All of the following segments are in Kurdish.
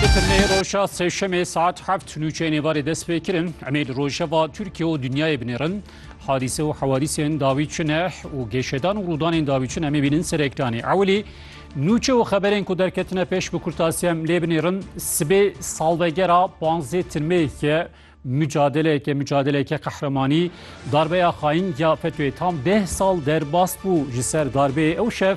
Di firmeyê roja sêşemê saet heft nûçeyên êvarê dest pê kirin. Em ê li rojeva Tirkiye û dinyayê binêrin. Hadîse û hewadîsên dawî çi ne û gêşedan û rûdanên dawî çi ne em ê bînin ser ekranê. Ewilî nûçe û xeberên ku derketine pêş bi kurtasî em lê binêrin. Sibê salvegera panzdê tirmeyê ye. Micadeleke micadeleke qehremanî darbeya xayîn ya FETÖ'yê tam deh sal derbas bû. Ji ser darbeyê ew şev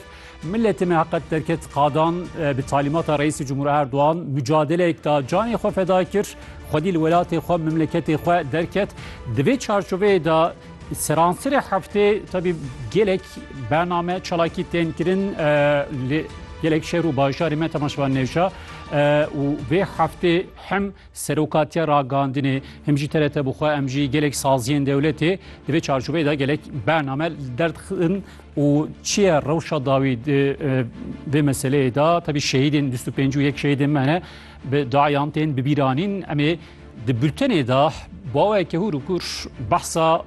miletê me heqet derket qadan bi talîmata Reîsê Cumhur Erdogan micadeleyek da canê xwe feda kir. Xwedî li welatê xwe memleketê xwe derket. Di vê çarçoveyê de seransirê heftê tevî gelek bername çalakî tên kirin li gelek şer û bajarê me temaşevan nêşa û vê heftê hem Seroka te ragandinê him jî terete bi xwe em jî gelek saziyên dewletê di vê çarçoveyê de gelek bername derdixin û çi ye rewşa dawî di vê meseleyê de tevî şehîdên bîst û pênc û yek şehîdên me ne bi dayan tên bibîranîn em ê di bultenê de baweke hûr û kur behsa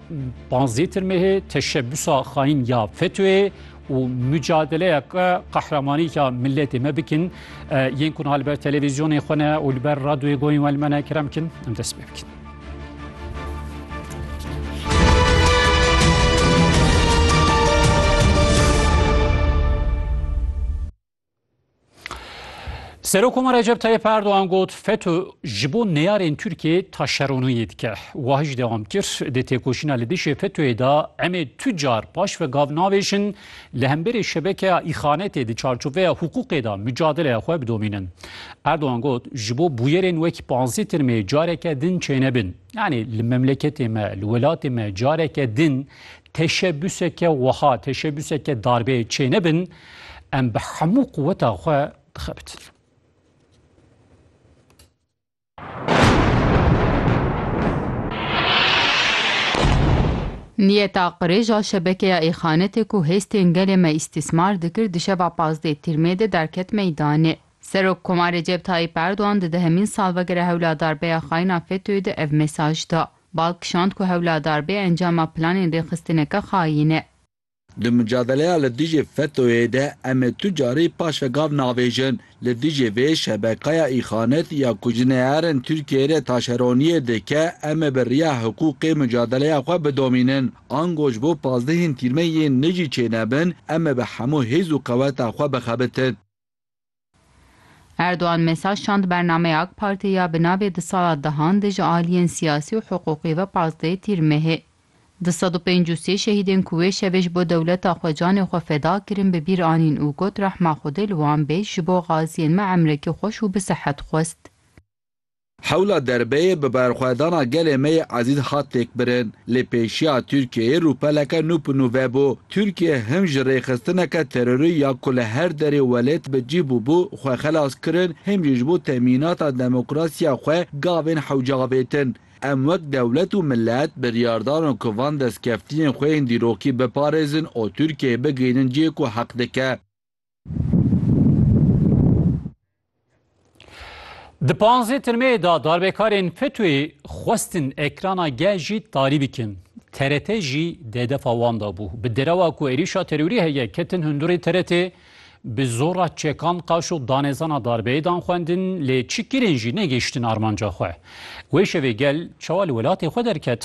panzêtir mehê teşebbûsa xayîn ya FETÖ'yê û mucadeleyeke qehremanî ya miletê me bikin. Yên ku li ber televîzyonê xwe ne û li ber radyoyê goyên we li me ne kerem kin em dest pê bikin. Serokoma Recep Tayyip Erdoğan got FETÖ ji bo neyarên Tirkiyê taşeroniyê dike. Wa hîç dewam kir dê têkoşîna li dijî FETÖ'yê da em ê tu car paş ve gav navêjin li hemberê şebekeya îxanetê di çarçoveya hiqûqê da micadeleya xwe bidomînin. Erdoğan got ji bo bûyerên wekî panzdeh tirmê careke din çênebin. Yanî li memleketê me li welatê me careke din teşebuseke wiha teşebuseke darbeyê çênebin Em bi hemû quweta xwe dixebitin. Niyeta qirêja şebekeya Êxanetê ku hêstên gelê me îstîsmar dikir di şeva pazdeh Tîrmê de derket meydanê. Serok Koma Recep Tayyîp Erdogan di dehemîn salvegera hewladarbeya xayna FETÖ'yê de ev mesaj da. Bal kişand ku hewladarbê encama planên rêxistineke xayîn e. Di mucadeleya li dijî FETÖ'yê de em ê tu carî paşve gav navêjin. Li dijî vê şebekaya îxanet ya ku ji neyarên Tirkiyeyê re taşeroniyê dike em ê bi riya hiqûqê mucadeleya xwe bidomînin. Ango ji bo pazdehên tîrmeyên nijî çênebin em ê bi hemû hêz û qeweta xwe bixebitin. Erdogan mesaj şand bernameya AK Partê ya bi navê Di sala dehan de ji aliyên siyasî û hiqûqî ve pazdeh Tîr Mehê du sed û pênc û sê şehîdên ku wê şevê ji bo dewleta xwe canê xwe feda kirin bi bîr anîn û got rehma Xwedê li wan bê ji bo gaziyên me emrekî xweş û bi sihet xwest. Hewla derbeyê bi berxwedana gelê me yê ezîz hat têkbirin. Lê pêşiya Tirkiyeyê rûpeleke nû bi nû vebû. Tirkiye him ji rêxistineke terorî ya ku li her derê welêt bi cîh bûbû xwe xelas kirin, him jî ji bo temînata demokrasiya xwe gavên hewce avêtin. Em wek dewlet û milet biryar darin ku van destkeftiyên xwe yên dîrokî biparêzin û Tirkiyeyê bigihînin cihê ku heq dike. Di panzê tirmeyê da darbekarên FETÖ'yê xwestin ekrana gel jî tarî bikin. TRT jî dê defa wan da bû. Bi derewa ku êrîşa terorî heye ketin hundurê TRT bi zora çekan qaş û danezana darbeyê dan xwendin lê çi kirin jî negihiştin armanca xwe. Wê şevê gel çawa li welatê xwe derket?